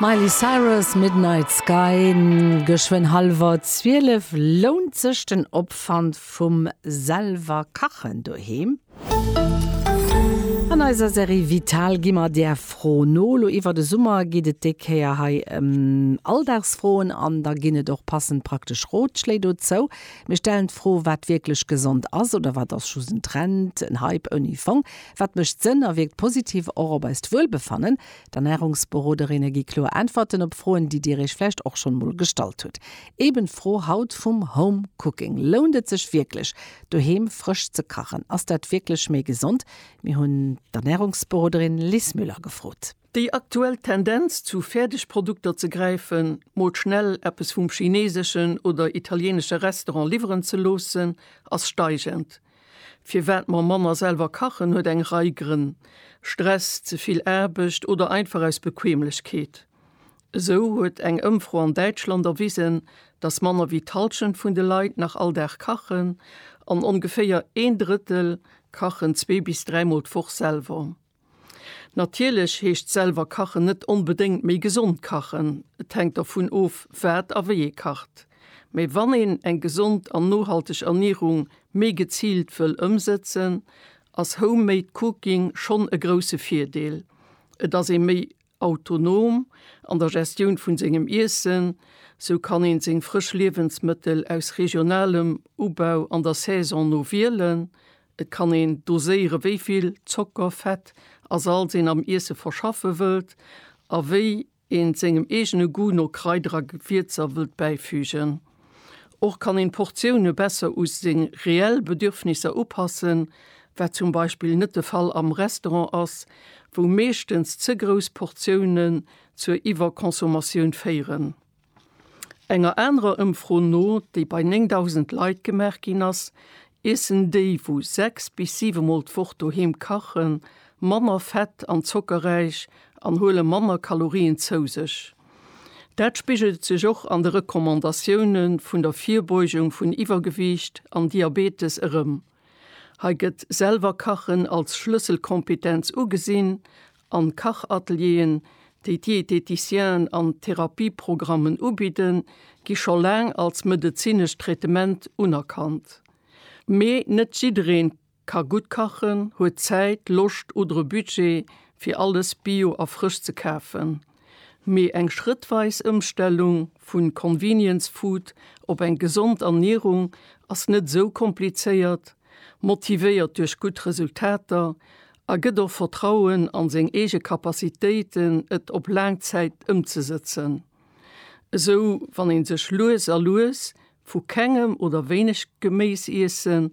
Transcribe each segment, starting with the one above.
Miley Cyrus, Midnight Sky, geschwënn hallwer 12. Lount sech den Opwand vum selwer Kachen doheem? An eiser Serie Vital gi mer där Fro no. Lo iwwer de Summer geet et déi Kéier hei ëm Alldagsfroen an da ginn et och passend praktesch Rotschléi dozou. Mir stellen d'Fro, wat wierklech gesond ass oder wat ass just en Trend, en Hype ouni Fong? Wat mécht Sënn a wierkt positiv och op eist Wuelbefannen? D'Ernärungsberoderinne gi kloer Äntwerten op Froen, déi Dir Iech vläicht och schonn mol gestallt hutt. Eben d'Fro haut vum Home Cooking, Lount et sech wierklech, doheem frësch ze kachen? Ass dat wierklech méi gesond? Mir hunn d'Ernärungsberoderin Lis Müller gefrot. Déi aktuell Tendenz, zu Fäerdegprodukter ze gräifen, mol schnell eppes vum chineeseschen oder italienesche Restaurant liwweren ze loossen, ass steigend. Firwat mer manner selwer kachen, huet eng Rei Grënn, Stress, ze vill Aarbecht oder einfach aus Bequemlechkeet. Esou huet eng Ëmfro an Däitschland erwisen, dass manner wéi d'Hallschent vun de Leit nach all Dag kachen an ongeféier een Drëttel kachen zwee bis dräimol d'Woch selwer. Natierlech heescht selwer kachen net onbedéngt méi gesond kachen. Et hänkt dervun of, wat a wéi ee kacht. Mee wann een eng gesond an nohalteg Ernierung méi geziilt wëll ëmsëtzen, ass Homemade Cooking schonn e grousse Virdeel. Et ass ee méi Autonom an der Gestioun vun sengem Iessen, sou kann een seng frësch Liewensmëttel aus regionalem Ubau an der Saison no wielen. Et kann een doséieren wéi vill Zocker, Fett a Salz een am Iesse verschaffen wëllt a wéi een sengem eegene Goût no Kraider a Gewierzer wëllt bäifügen. Och kann een d'Portioune besser u seng reell Bedürfnisser upassen, wat zum Beispill net de Fall am Restaurant ass, wou meeschtens ze grouss Portiounen zur Iwwerconsommatioun féieren. Enger anerer Ëmfro no, déi bei 9.000 Leit gemaach ginn ass, iessen déi wou sechs bis siwe Mol d'Woch doheem kachen, manner fett an zockerräich an huele manner Kalorien zou sech. Dat spigelt sech och an de Recommandatioune vun der Virbeugung vun Iwwergewiicht an Diabetes erëm. Hei gëtt selwer Kachen als Schlësselkompetenz ugesinn a Kachatelieren, déi d'Dieteticienen an Therapieprogrammen ubidden, gi scho laang als medezinescht Traitement unerkannt. Mee net jiddereen Ka gutt kachen, huet Zäit, Loscht oder e Budget fir alles bio a frësch ze kafen. Mee eng schrëttweis Ëmstellung vu Convenience Food op eng gesond Ernierung ass net esou komplizéiert, motivéiert duerch gutt Resultater a gëtt och Vertrauen a seng eege Capacitéiten et op laang Zäit ëmzesëtzen. Esou wann ee sech lues a lues vu kengem oder wéineg Geméis iessen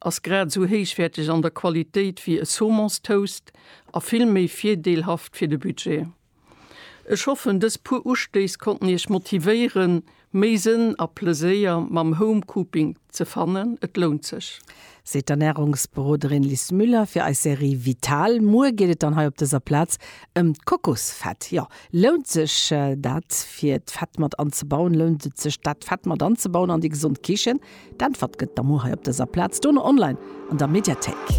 Ass grad esou héichwäerteg an der Qualitéit wéi e Saumons Toast a vill méi virdeelhaft fir de Budget. Ech hoffen dës puer Ustéiss konnten Iech motivéieren méi Sënn a Pleséier mam Home Cooping ze fannen. Et lount sech! Seet d'Ernärungsberoderin Lis Müller fir eis Serie Vital. Muer geet et dann hei op dëser Plaz ëm d'Kokosfett. Jo, Lount sech dat fir d'Fett mat anzebauen? Lount et sech dat Fett mat anzebauen an déi gesond Kichen? D'Äntwert gëtt der muer hei op dëser Plaz, dono online an der Mediathéik.